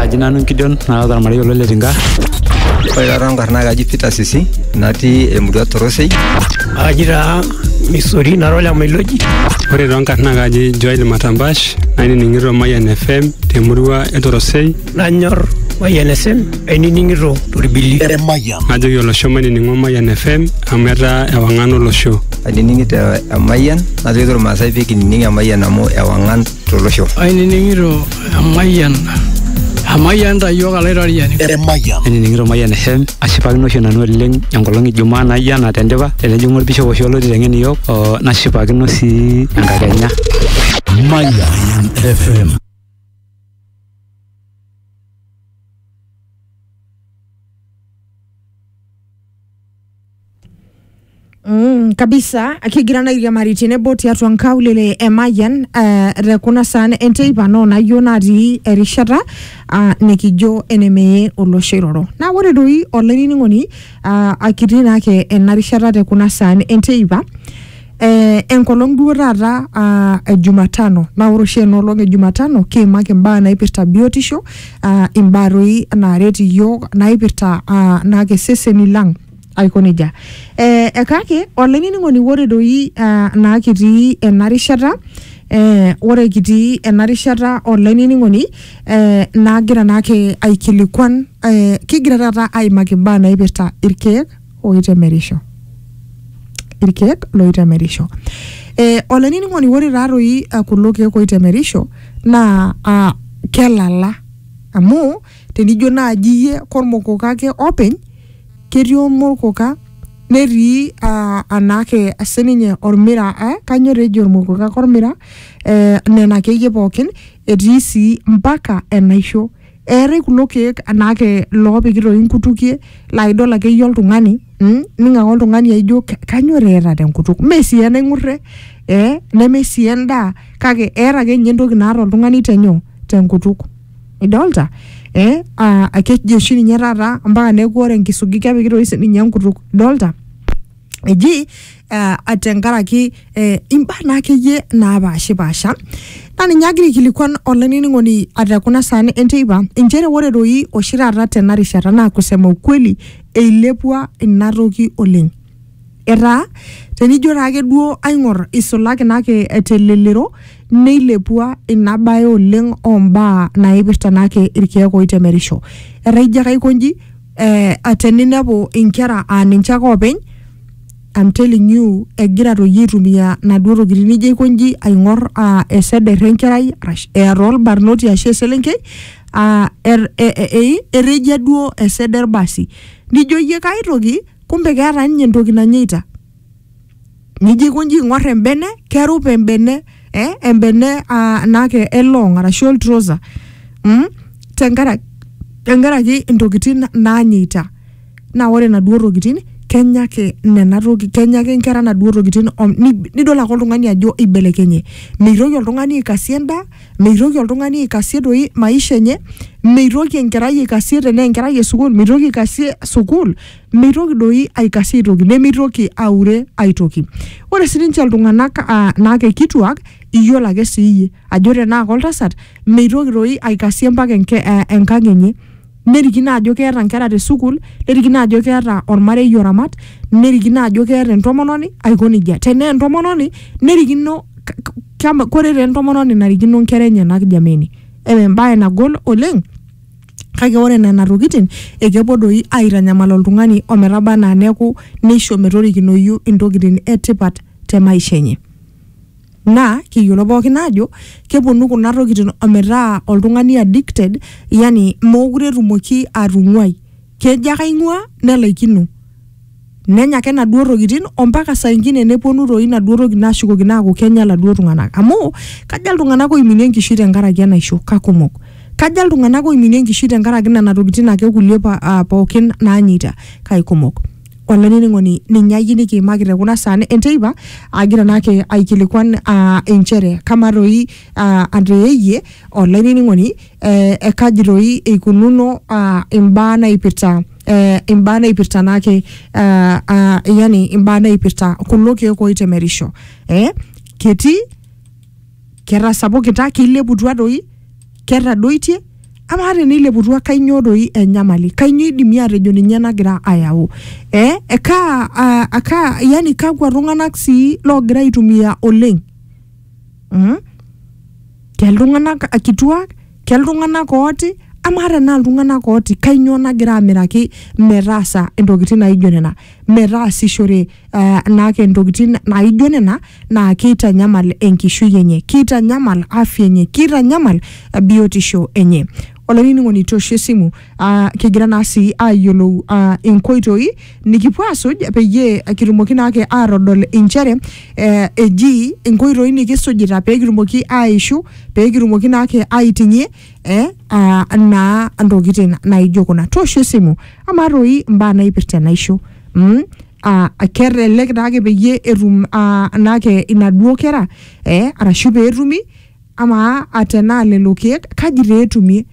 Aji nanu Gideon naata ormarei olo Letinka. Ore taata nkarna kaji Peter Sisi natii emurua Torosei. Aji taa Misori nara Olamailodi. Ore too nkarna kaji Joel Matambash nainining'ito Mayian FM temurua e Torosei. Nanyor Mayian FM ainining'ito torbili. Emayian. Najoki olosho mainining'o Mayian FM amu etaa ewang'an olosho. Ainining'ito Emayian najoki irmaasai pee kinining Emayian amu ewang'an tolosho. Ainining'ito emayian emayian ta iyiook alaitoriani. Emayian. Ainining'ito Mayian FM ashipakino oshi nanu oleng enkolong e Jumaa naijo ena tendipa tenejing'u olbishop oshi olo aiteng'en iyiook oo nashipakino sii enkakenya. Mayian FM. Mm, kabisa kigira naa airiamari tenebo tiatua nkaulele e Mayian eh, te kuna saan enteipa noo nayioo natii erishata ah, nikijo enemeye olosho iroro. Naa ore doi olainining'oni ah, akitii naake ena rishata te kuna saan enteipa Eh, enkolong duo taata ah, e Jumatano naa ore oshi ena olong e Jumatano kiimaki imbaa naipirta biotisho ah, imbaa doi naaret iyiook naipirta ah, naake iseseni lang aiko nejia. Eh, eh, kake olainining'oni ore doi ah, naa kitii ena rishata eh, ore kitii ena rishata olainining'oni eh, naagira naake aikilikuan eh, kigira taata aimaki imbaa naipirta irkeek oitemerisho irkeek loitemerisho eh, olainining'oni ore taatoi ah, kulo keek oitemerisho naa ah, kelala amu tenijo naaji iyie kormokoka ake openy ketii ormokoka netii ah, anaake sininye ormira eh, kanyo tejo ormokoka kormira eh, nena akeyie pookin etii sii mpaka enaisho Eetae kulo keek anaake loopiki toi inkutukie laa idol ake iyie oltung'ani mm, ning' ake oltung'ani aijo "Ka- kanyor eeta tenkutuk mee sii enaing'urre eh, neme sii endaa kake eeta ake ninye entoki naata oltung'ani tenyoo tenkutuk idolta eh, aa keji oshi ninye taata mpaka neeku ore enkisugi kepiki toi sininye enkutuk idolta. eji uh, tenkaraki eh, imbaa naa akeyie naapashipasha naa ninye agira aikilikuan olainining'oni ate kuna saan enteipa inchere ore doi oshi taata tena rishata naa kusema ukweli eilepua ina toki oleng etaa tenijo taake duo aing'or isulaki naake telelero neilepua ina bae oleng ombaa naipirta naake irkeek oitemerisho etaa ijo ake aikonji eh, ate ninepu inkera aa ninche ake oopeny I'm telling you egira toyie aitumia naduo tokitin nijo aikonji aing'or ah, eseder enkerai arash eeta olbarnoti ashu eselenkei ah, er- e- e- e- erejia duo eseder basi nijo iyie kae toki kumbe keeta ninye entoki nanyeita nijo aikonji aing'or embene kerup embene eh, embene ah, naake elong arashu oltrosa mm? tenkaraki tenkaraki intokitin naanyeita naa ore naduo tokitin kenya ake nena toki kenya ake inkera naduo tokitin om- ni- nidol ake oltung'ani ajo ibelekenye meitoki oltung'ani aikasie endaa meitoki oltung'ani aikasie doi maisha enye meitoki enkerai aikasie tenaa enkerai esukul meitoki aikasie sukul meitoki doi aikasie aitoki nemeitoki aure aitoki. Ore sii ninche iltung'anak uh, naake kituak iyiolo ake sii iyie ajo tenaa koltasat meitoki doi aikasie mpaka enke, eh, enkang enye nerikino ajo keeta nkera te sukuul nerikino ajo keeta ormarei oramat nerikino ajo keeta entomononi aiko nejia tenaa entomononi nerikino kore taa entomononi narikino nkera enyenak jameni embaye nagol oleng. Kake ore nena tokitin ekepuo doi aaitanyamal oltung'ani o metaba anaa neaku neisho metorikinoyu intokitin e tipat te maisha enye. Naa kiyiolo pooki aajo kepuonu kuna tokitin o metaa oltung'ani addicted yani meekure etumoki atung'uai. Kejo ake aing'uaa nelaikino. nenya ake naduo tokitin ompaka saa ingine neponu toi naduo tokitin ashukokino aaku kenya laduo tung'anak amu kaja iltung'anak oiminie enkishui tenkaraki enaisho kakumok kaja iltung'anak oiminie enkishui tenkaraki nena tokitin ake kulie pa, uh, pookin naanyeita kaikumok olainining'oni ninye ayie nikiimaki te kuna saan enteipa agira naake aikilikuan uh, inchere kamaa toi uh, ateeyie olainining'oni eh, eh, kaji doi eikununo ah, imbaa naipirta eh, imbaa naipirta naake ah, ah, yani imbaa naipirta kulo keek oitemerisho eh, ketii ketasapukita keileputua doi ketadoitie amaa teneileputua kainyoo doi enyamali kainyoo idimi atejo ninye nagira ayau eh, ekaa, ah, akaa yani kakwa tung'anak sii loogira aitumia oleng mm? ke iltung'anak eh, kituak ke iltung'anak ooti amaa tenaa iltung'anak ooti kainyoo nagira amiraki metaasa intokitin naijo nena metaasishore uh, naake intokitin naijo nena naa keitanyamal enkishui enye keitanyamal afya enye keitanyamal eh, biotisho enye olainining'oni tosho esimu uh, kigira naa sii ayiolou uh, inkoitoi nikipuo asuj peyie kitumoki naake atodol inchere eh, eji inkoitoi nikisujita pee kitumoki aishu pee kitumoki naake aiting'ie eh, uh, naa ntokitin naijo kuna toosho esimu amaa toi imbaa naipirta enaisho mm? uh, kelelek naake peyie etum uh, naake inaduo kera eh, arashu peetumi amaa atenaa lelo keek kaji taa etumie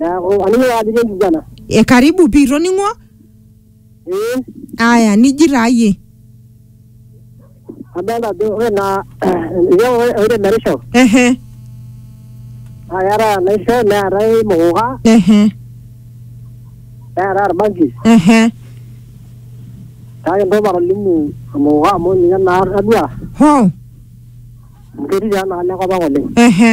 Neaku aning ake ajo kenkiguana. E karibu pii itoning'o? Ee. Aya niji taa iyie. Adolta ajo ore naa oitemerisho. Ehe. Naa keetae enaisho neetae imukuka. Ehe. Neetae orbanki. Ehe. Kake entoki matolimu emukuka amu ninye naa atadua. Hoo. Amu ketii taa enaalo enkop ang oleng. Ehe.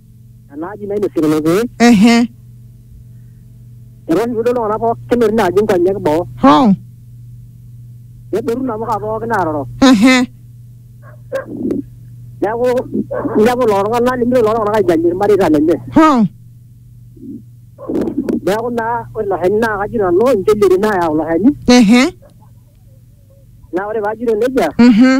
enaaji nainosie lelo keek ehe etaa oshi piidol iltung'anak pookin etii ina aji nkonyek boo hoo nedotu inamuka pookin aaroro ehe neeku inepu lelo tung'anak nimitoki lelo tung'anak aijalie irmareita lenye hoo neeku naa ore ilo shani naa kaji nanu inchilieti naayau ilo shani ehe naa ore paajito nejia mhm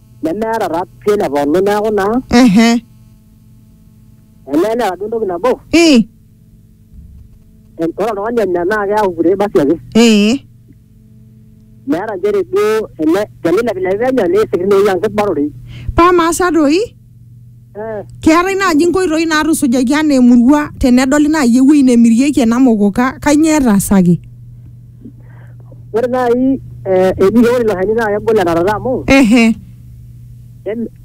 nemeeta taa pii ele pooki neeku naa ehe elee neeta duo entoki nabo ii en- ore oltung'ani onya naa keaku kure basi ake ee meeta nchere duo ele tenilepilepi penyo neisik tinewueji amu kibororei paa maasa doi Keetae naaji inkoitoi naatusujaki anaa emurua tenedoli naaji ewueji nemirieki ena mokoka kainyioo etaasaki? Ore naaji eh, eji ore ilo shani naa kegol etarata amu Ehe. em-